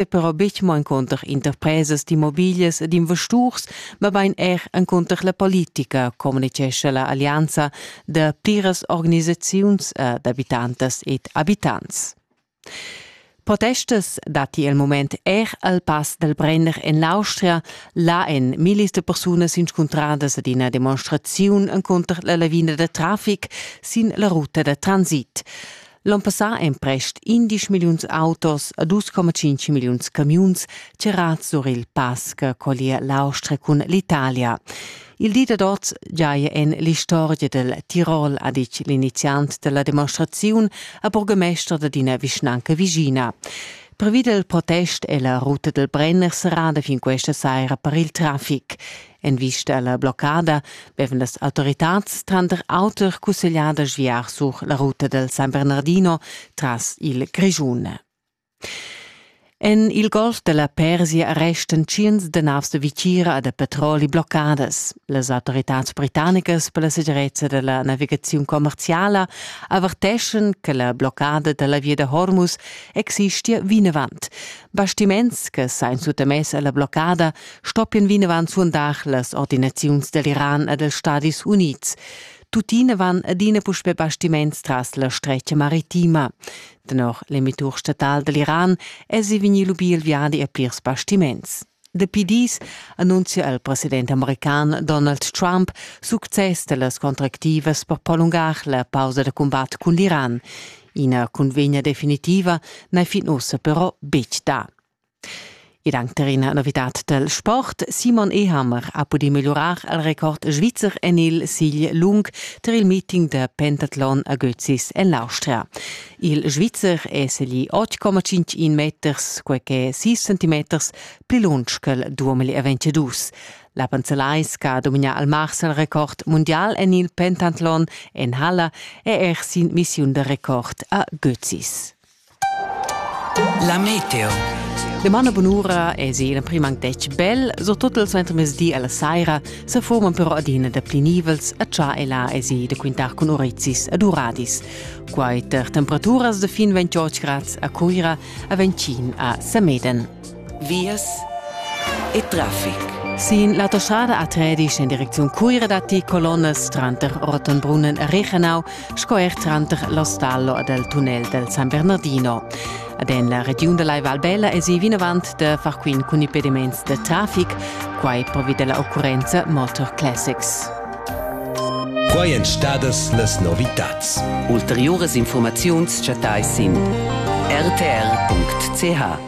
e però betg mo encunter interpresas d'immobiglias e d'investurs, mabain er encunter la politica, communitgescha la allianza da pliras organisaziuns d'abitantas ed abitants. Protestas datti il moment er al pass dal Brenner en l'Austria. Là èn millis da persunas inscuntradas ad ina demonstraziun encunter la lavina da traffic sin la ruta da transit. L'on passà èn prest 11 milliuns autos e 2,5 milliuns camiuns tgerads sur il pass che collia l'Austria cun l'Italia. Il di dad oz giaja en l'istorgia del Tirol, ha ditg l'iniziant della demonstraziun a burgemester d'ina vischnanca vigina. Previs il protest è la ruta del Brenner serrada fin questa saira per il traffic. En vista alla bloccada bevan las autoritads tranter auter cusseglià da sviar sur la ruta del San Bernardino tras il Grischun. En il golf della Persia restan tschients de navs de Vicira da petroli bloccadas. Las autoritads britannicas per la segirezza della navigazione commerciala averteschan che la bloccada della via de Hormuz existia vinavant. Bastiments che sein suttamess alla bloccada stoppien vinavant suondar las ordinaziuns dell'Iran e dels Stadis Unids. Tuttina van adina puspè bastiments tras la stretga maritima. Tenor l'emitur statal dell'Iran èsi vegni lubì il viadi a plirs bastiments. Dapi dis annunzia il president american Donald Trump success dellas contractivas per prolungar la pausa da combat cun l'Iran. Ina cunvegna definitiva n'è fin ussa però betg da. Ed anc tar ina novitad dal sport. Simon Ehammer ha pudì megliurar il record svizzer en il sigl lung tar il meeting da pentatlon a Götzis en l'Austria. Il Svizzer è seglì 8,51 meters, quai che è 6 centimeters pli lunsch ch'el duamili e 22. La Panzelais che ha dominà al mars il record mundial en il pentatlon en halla è er sin missiun da record a Götzis. La meteo. Demana bunura es in prim anc detg bel, so tot il suentermezdi alla saira se forman però adina da pli nivels a cha e là es i da quintar cun orizis ad uradis. Quai ter temperaturas de fin 28 grads a Cuira a 25 a Semeden. vias e traffic. Sin la toschada a Tredisch en direcziun Cuira datti colonnas tranter Ortenbrunnen e Reichenau sco er tranter l'ostallo ed il tunnel del San Bernardino. Ad en la regiun da Lai Valbella esi vinavant da far quint cun impediments de traffic, quai provi della occurrenza Motor Classics. Quai èn stadas las novitads. Ulteriuras informaziuns chattai sin rtr.ch.